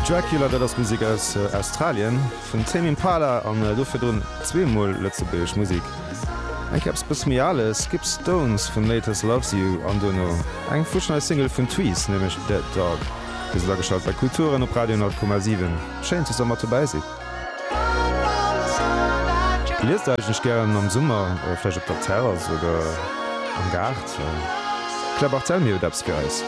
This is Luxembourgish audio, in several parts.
Dracula, dat ass Musek aus Australien vun Tame Impala an do virdrun zwee mol lëtzebuergesch Musek. Eng Kéier eppes e bësse méi ale Skip Stones vun Latest Loves You an duerno eng futsch nei Single vun Tweez, nämlech Dead Dog. Dir sidd ageschalt bei Kulturen op Radio 10,7. Schéin, dass der mat dobäi sidd. Liest der eigentlech gären am Summer, vläicht op der Terrass oder am Gaart? Claire Barthel, Mir huet eppes fir eis.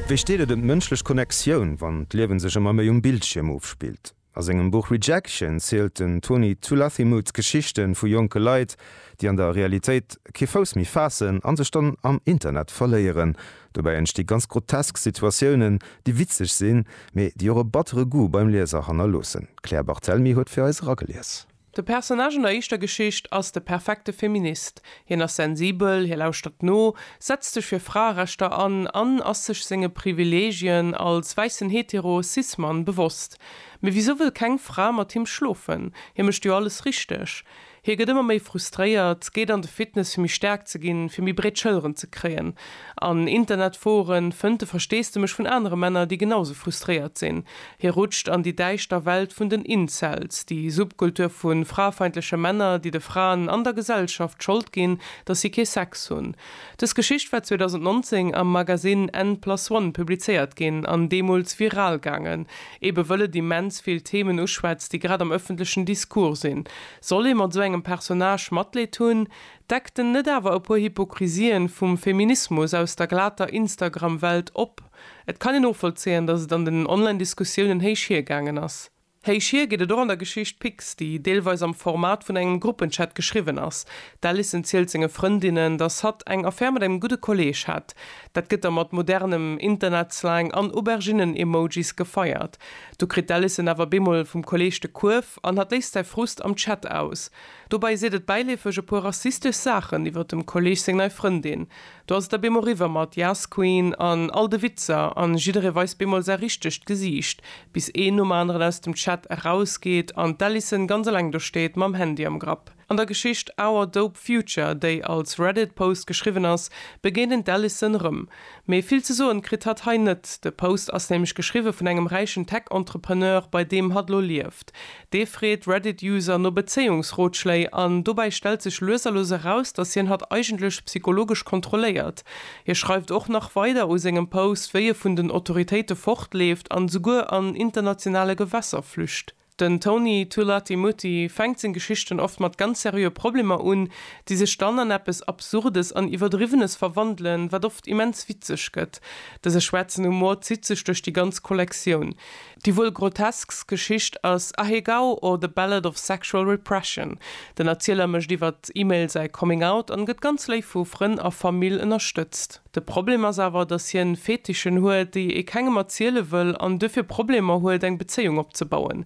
Wéi steet et ëm d'mënschlech Connectioun, wann d'Liewen sech ëmmer méi um Bildschierm ofspillt? A sengem Buch Rejection zielt den Tony Tulathimuth d'Geschichten vu jonke Leit, déi an der Realitéit kee Fouss méi faassen an sech dann am Internet verléieren. Dobäi entsti ganz grotesk Situatiounen, déi witzeg sinn, mee déi och e battere Goût beim Lieser hannerloossen. D'Claire Barthelmy huet fir eis eragelies. De Personnage an der éischter Geschicht ass de perfekte Feminist. Hien ass sensibel, hie lauschtert no, setzt sech fir Fraerechter an an ass sech senge Privileegien als wäissen hetero Cis-Mann bewosst. Mee wisou wëll keng Fra mat him schlofen? Hie mécht jo alles richteg. Hie gëtt ëmmer méi frustréiert, geet an de Fitness fir méi staark ze ginn, fir méi breet Schëlleren ze kréien. An Internetforen fënnt de Versteesdemech vun anere Männer, déi genausou frustréiert sinn. Hie rutscht an déi däischter Welt vun den Incels, déi Subkultur vu frafeindleche Männer, déi de Fraen an der Gesellschaft d'Schold ginn, datt si kee Sex hunn. Dës Geschicht war 2019 am Magasinn n plus one publizéiert ginn an deemools viral gaangen, ebe wëll et immens vill Themen uschwätzt, déi grad am ëffentlechen Discours sinn. Soll ee mat sou engem Personnage Matleed hunn? Deckt en net awer e puer Hypokrisien vum Feminismus aus der glater Instagram-Welt op? Et kann een novollzéien, datt et an den Online-Diskussiounen héich hier gaangen ass. Héich hier geet et och an der Geschicht Pix, déi deelweis am Format vun engem Gruppenchat geschriwwen ass. D'Alison zielt senge Frëndinnen, datt hatt eng Affär mat engem gudde Kolleeg hätt. Dat gëtt da mat modernem Internetslang an Auberginnen-Emojis gefeiert. Do kritt d'Alison awer bemol vum Kolleeg de Kuerf an hatt léisst säi Frust am Chat aus. Dobäi seet et bäileefeg e puer rassistesch Saachen iwwer dem Kolleeg seng nei Frëndin. Do ass et da bemol riwwer mat Yas Queen an all de Witzer an jidderee weist bemol säi richtegt Gesiicht, bis een nom aneren aus dem Chat erausgeet an d'Alison ganz eleng do steet mam Handy am Grapp. An der Geschicht Our Dope Future, déi als Reddit Post geschriwwen ass, begéint een d'Alison erëm. Mee vill ze soen kritt hatt hei net. De Post ass nämlech geschriwwe vun engem räichen Tech-Entrepreneur, bei deem hatt lo lieft. Dee freet Reddit-User no Bezéiungsrotschléi an dobäi stellt sech lues a lues eraus, dass hien hatt eigentlech psychologesch kontrolléiert. Hie schreift och nach weider u sengem Post, wéi e vun den Autoritéite fortleeft an esouguer an internationale Gewässer flücht. Den Tony Tulatimutti fänkt seng Geschichten oft mat ganz seriöe Problemer un, déi sech dann an eppes Absurdes an Iwwerdriwwenes verwandelen, wat oft immens witzeg gëtt. Dëse schwaarzen Humor zitt sech duerch déi ganz Kollektioun. Déi wuel groteskst Geschicht ass Ahegao or the Ballad of Sexual Repression. Den Erzieler mécht iwwer E-Mail säi Coming Out an gëtt ganz léif vu Frënn a Famill ënnerstëtzt. De Problem ass awer, datt hien Fetischen huet, déi ee kengem erziele wëll an duerfir Problemer huet, eng Bezéiung opzebauen.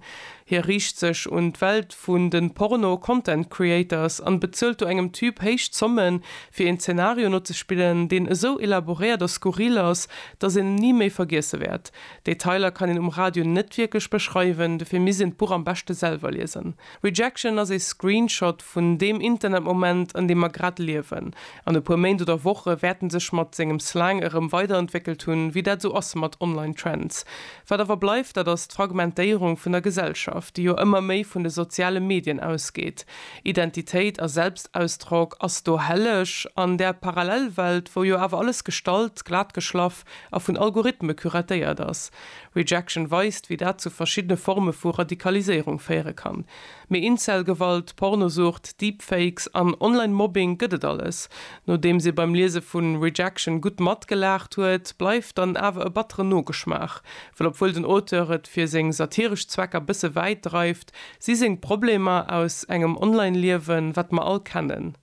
Hie riicht sech un d'Welt vun de Porno Content Creators an bezuelt do engem Typ héich Zommen, fir een Zenario nozespillen, deen esou elaboréiert a skurril ass, datt een en ni méi vergiesse wäert. Detailer kann een um Radio net wierklech beschreiwen, dofir misst een d'Buch am beschte selwer liesen. Rejection ass ee Screenshot vun deem Internetmoment, an deem mer grad liewen. An e puer Méint oder Woche wäerten sech mat sengem Slang erëm weiderentwéckelt hunn, wéi dat esou ass mat Online Trends. Wat awer bleift, dat ass d'Fragmentéierung vun der Gesellschaft, déi jo ëmmer méi vun de soziale Medien ausgeet. Identitéit a Selbstausdrock ass do helleg an där Parallelwelt, wou jo awer alles gestallt, glatgeschlaff, a vun Algorithme curatéiert ass. Rejection weist, wéi dat zu verschiddene Forme vu Radikaliséierung féiere kann. Mee Incel-Gewalt, Pornosucht, Deepfakes an Online-Mobbing gëtt et alles. Nodeems ee beim Liese vu Rejection gutt matgelaacht huet, bleift dann awer e batteren Nogeschmaach. Well obwuel den Auteur et fir seng satiresch Zwecker bësse wäit dreift, si seng Problemer aus engem Online-Liewen, wat mer all kennen.